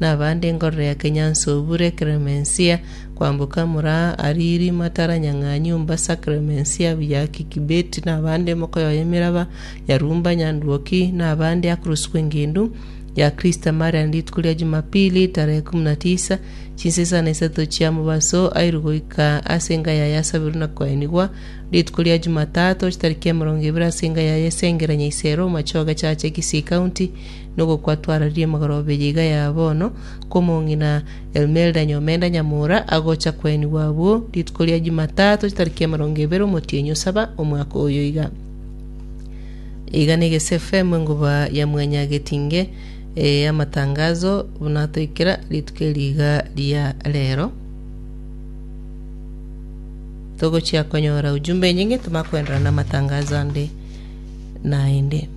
nabande enkororo ya Kenyanso Obure Clemencia, kwamboka Muraa, Ariri, Matara, Nyang'anyu, Mbasa, Clemencia, Buyaki, Kibeti, nabande mokoyoa emeraba ya Rumba, Nyanduoki, nabande akoroswa engendu ya Christa Marian rituko ria Jumapili tarehe kumi na tisa chinse sana isato chia mobaso airwe goika ase enga yaye asabirwe na koenigwa rituko ria Jumatatu chitariki emerongo ebere ase enga yaye Sengera Nyaisero Machoge Chache Kisii County Nogokwa twararie magoro abere iga ya bono, kw'omong'ina Elmelda Nyomenda Nyamura, agocha kwenigwa abwo rituko ria Jumatato chitariki emerongo ebere omotienyi osaba omwaka oyo iga. Iga na Egesu FM enguba ya mwanya getinge eh, amatangazo buna atoikera rituko eri iga ria rero. Togochia konyora ujumbe enyinge, toma kwenderana na amatangazo ande naende.